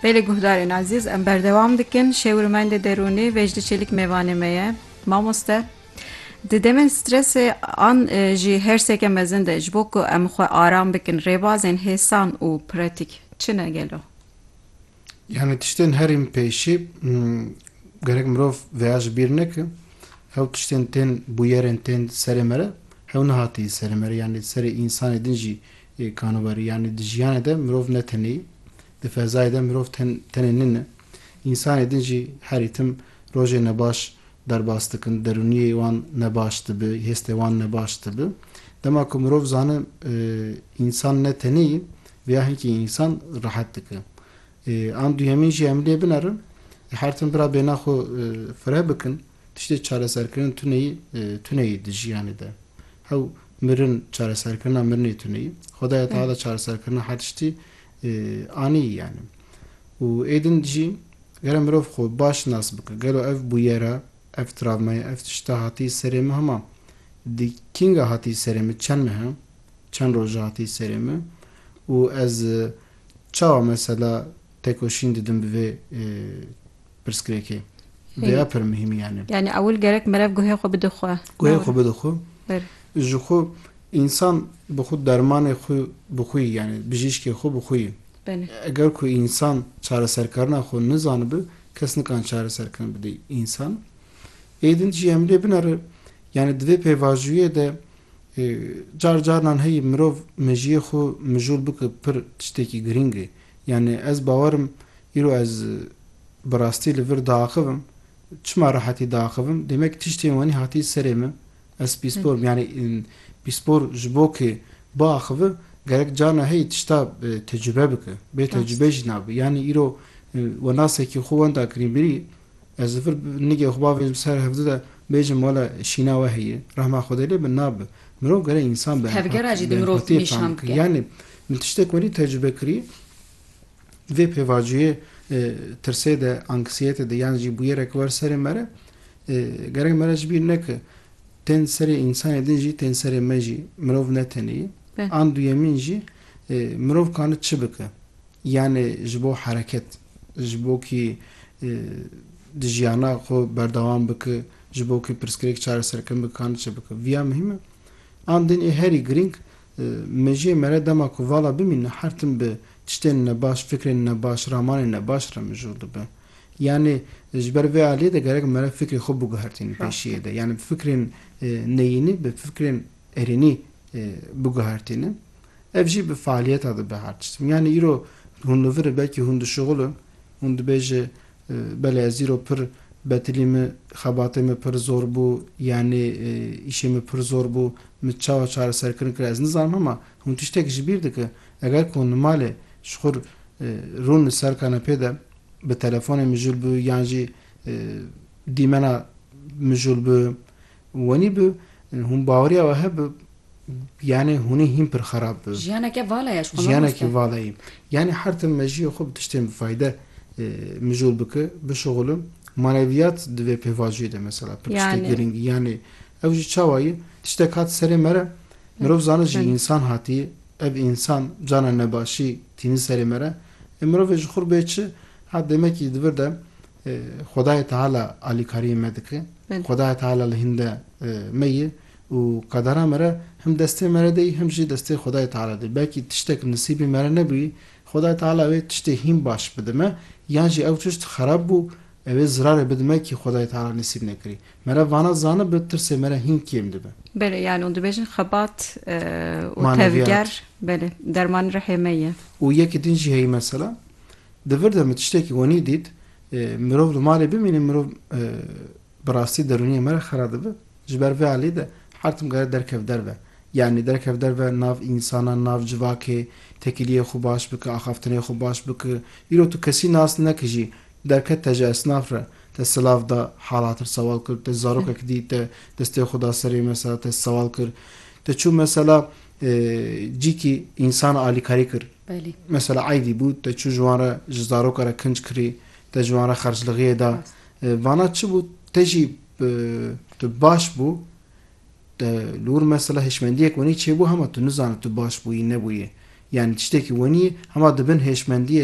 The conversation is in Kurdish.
Belê guhdarên ezîz em berdewam dikin şêw û mendê derûnî Vejdi Çelik mêvanê me ye. Mamoste di demên stresê an jî hersêke mezin de ji bo ku em xwe aram bikin rêbazên hêsan û pratîk çi ne gelo? Yani tiştên herîm pêşî gerek mirov veya ji bîr neke hew tiştên tên bûyerên tên serê me re hew nehatiye serê me re yani serê însanê din jî Yê kanobarî yanî di jiyanê de mirov ne tenêyî, di fezayê de mirov tenê nine. Însanê din jî herî tim rojên nebaş derbas dikin, derûniyê wan nebaş dibi, hêstê wan nebaş dibi. Dema ku mirov zani însan ne tenêyî, vêya hinkî însan rehet dike. An duyemîn jî em lê binerin, her tim bira bêhna xwe fireh bikin. Tiştê çareserkirin tuneyî tuneyî di jiyanê de hew mirin çareserkirina mirinê tuneyî Xwedaya Teala çareserkirina her tiştî anî yanî û êdin jî gere mirov xwe baş nas bike gelo ev bûyera ev travmaya ev tişta hatî serê min hema di kînga hatî serê min çend mehe çend roje hatî serê min û ez çawa mesela tekoşîn didim bi vê pirsgirêkê vêya pir muhîmî yanî. Yanî ewil gerek merev guhê xwe bide xwe. Guhê xwe bide xwe. Ji xwe însan bi xwe dermanê xwe bi xwe yî yanî bijîşkê xwe bi xwe yî. Eger ku însan çareserkarina xwe nizanibe kes nikan çareserkirin bide însan. Ê din jî em lê binere yanî di vê pêvajoyê de car carinan heyî mirov mejiyê xwe mijûl bike pir tiştekî girîng e. Yanî ez bawer im îro ez bi rastî li vir diaxivim. Çima re hatî diaxivim? Demek tiştên wenî hatî serê min. Ez pîspor im. Yanî pîspor ji bo ku biaxive gerek carna heyî tişta tecrube bike. Bê tecrube jî nabe. Yanî îro wenasekî xwe wenda kirî mirî Ez vir nigê xwe bavê ji ser hevdu de bêjim wele şîna we heye. Rehma Xwedê lê bi nabe. Mirov gere însan bi empatiyê fam dike. Yanî min tiştek welî tecrube kirî di vê pêvacûyê tirsê de, anksiyetê de yan jî bûyereke wer serê me re gerek me re ji bîr neke tên serê însanê din jî tên serê me jî mirov ne tenê ye. An duyemîn jî mirov kane çi bike? Yanê ji bo hereket. ji bo kî di jiyana xwe berdewam bike, ji bo kî pirsgirêk çareserkirin bike ka niçe bike. Viya muhîm e. An din ê herî girîng mejiyê me re dema ku vala bimîne her tim bi tiştên nebaş, fikrên nebaş, ramanên nebaş re mijûl dibe. Yanî ji ber vê aliyê de gerek me re fikrê xwe biguhertînin pêşiyê de. Yanî bi fikrên neyînî, bi fikrên erênî biguhertînin ev jî bi faaliyeta di be her tişt. Yanî îro hûn li vir belkî hûn dişuxul in, hûn dibêje belê ez îro pir betilî min xebatê min pir zor bû yanî îşê min pir zor bû min çawa çareserkirin kir ez nizanim hema hûn tiştek ji bîr dikin eger ku hûn li malê ji xwe rûn li ser kanepê de bi telefonê mijûl bi yan jî dîmena mijûl bi Wanî bi hûn baweriya we hebe yanê hûnê hîn pir xerab bi. Jiyaneke vala ye ji xwe mamoste. Jiyanekî vala ye. Yanê her tim mejiyê xwe bi tiştên bi fayde mijûl bike, bişuxulin. Maneviyat di vê pêvajoyê de mesela pir tiştê girîngî yanê ew jî çawa ye? Tiştek hat serê me re mirov zana ji însan hatiye. Ev însan cana nebaşî tînin serê me re. Ê mirovê ji xwe re bê çi? Ha demekî di vir de Xwedayê Teala alîkariyê me dike. Xwedayê Teala li hîn de me ye û qedera me re him destê me re deyî him jî destê Xwedayê Teala de. Belkî tiştek nisîbê me re nebûyî, Xwedayê Teala wê tiştê hîn baş bide me yan jî ew tişt xerab bû ew ê zirarê bide me kî Xwedayê Teala nisîb nekirî. Me re vana zanibe tirsê me re hîn kêm dibe. Belê yan û dibêjin xebat û tevger belê dermanê rihê me ye. Û yekî din jî heyî mesela Di vir de min tiştekî wenî dît, mirov li malê bimîne mirov bi rastî derûniyê me re xera dibe. Ji ber vê alî de her tim kare derkev derve. Yanî derkev derve nav însanan, nav civakê, tekiliyê xwe baş bike, axaftinê xwe baş bike. Îro tu kesî nas neke jî derket te ji esnaf re, te silav da, hal hatir sewal kir, te zarokek dît te destê xwe da serê mesela te sewal kir, te çû mesela cîkî însan alîkarî kir. Belê. Mesela eydî bû te çû ji wan re ji zaroka re kinc kirî, te ji wan re xerclixiyê da. Vana çi bû te jî tu baş bû te li wir mesela hêşmendiyek wenî çêbû hema tu nizane tu baş bûyî nebûyê. Yanî tiştekî wenî hema di bin hêşmendiyê